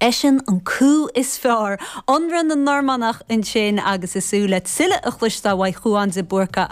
Eisean an Cú is fearr. Ionradh na Normannach ansin agus ag súil le tuilleadh a chloisteáil uaidh Chuán de Búrca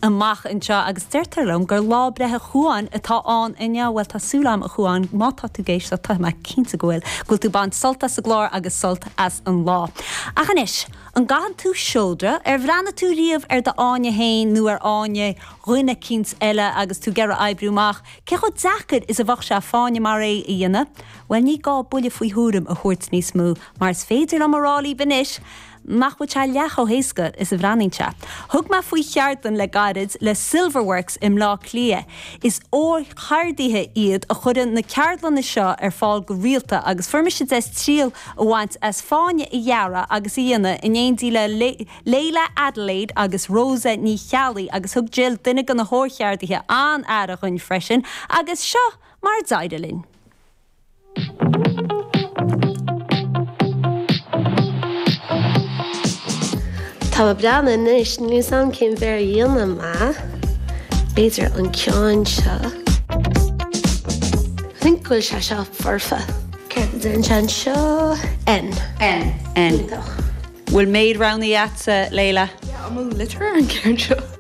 amach anseo agus deirtear liom gur lá breithe Chuáin atá ann inniu. Bhuel, tá súil agam, a Chuáin, má tá tú ag éisteacht, tá mé cinnte go bhfuil, go bhfuil tú ag baint sult as an gclár agus sult as an lá. Ach anois, an gcaitheann tú seodra? Ar bhreathnaigh tú riamh ar do fháinne féin nó ar fháinne dhuine eicínt eile agus tú ag iarraidh oibriú amach cé chomh deacair is a bheadh sé fáinne mar é a dhéanamh? Bhuel, ní gá buille faoi thuairim a thabhairt níos mó, mar is féidir liom a rá libh anois nach bhfuil sé leath chomh héasca is a bhreathnaíonn sé. Thug mé faoi cheardlann le gairid le Silverworks i mBleá Cliath. Is órcheardaithe iad a chuireann na ceardlanna seo ar fáil go rialta agus fuair mise deis triail a bhaint as fáinne a dhearadh agus a dhéanamh in éindí le Leila Adelaide agus Rosa Ní Cheallaigh agus thug Jill, duine de na hórcheardaithe, an-aire dhuinn freisin agus seo mar a d'éirigh linn. Tá mé ag breathnú anois, níl fhios a'm cén mhéar a dhéanfaidh mé, b'fhéidir an ceann seo. Think go bhfuil sé seo foirfe. Céard a deireann sé anseo? N. N. N. Iontach. Bhfuil méid roghnaithe a'tsa, Leila? Yeah, I'm a litterer an ceann seo.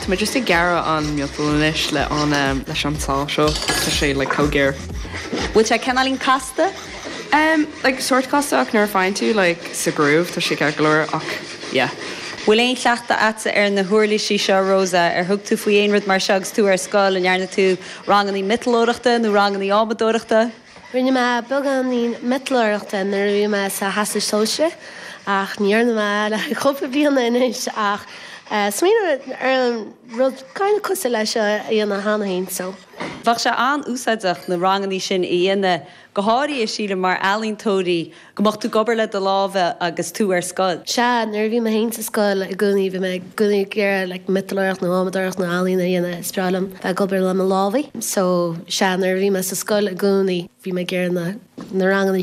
Tá muid just ag gearradh an miotal anois le an leis an sábh seo. Tá sé le comh géar. Bhfuil sé cineáilín casta? Em, like, sórt casta ach nuair a faigheann tú, like, sa groove, tá sé ceart go leor ach yeah. Bhfuil aon chleachtadh agatsa ar na huirlisí seo, Rosa? Ar thug tú faoi aon rud mar seo agus tú ar scoil? An ndearna tú rangannaí miotalóireachta nó rangannaí adhmadóireachta? Rinne mé beagáinín miotalóireachta nuair a bhí mé sa Teastas Sóisearach ach ní dhearna mé le cúpla bliana anois ach cuimhním ar an rud kind of cosúil leis seo a dhéanamh cheana féin so. Bheadh sé an-úsáideach na rangannaí sin a dhéanamh, go háirithe sílim mar ealaíontóirí Go mbeadh tú ag obair le do láimhe agus tú ar scoil. Sea, nuair a bhí mé féin sa scoil i gcónaí bhí mé i gcónaí ag iarraidh like miotalóireacht nó adhmadóireacht nó ealaín a dhéanamh, is breá liom bheith ag obair le mo lámhaí. So, sea, nuair a bhí mé sa scoil i gcónaí bhí mé ag iarraidh na ranganna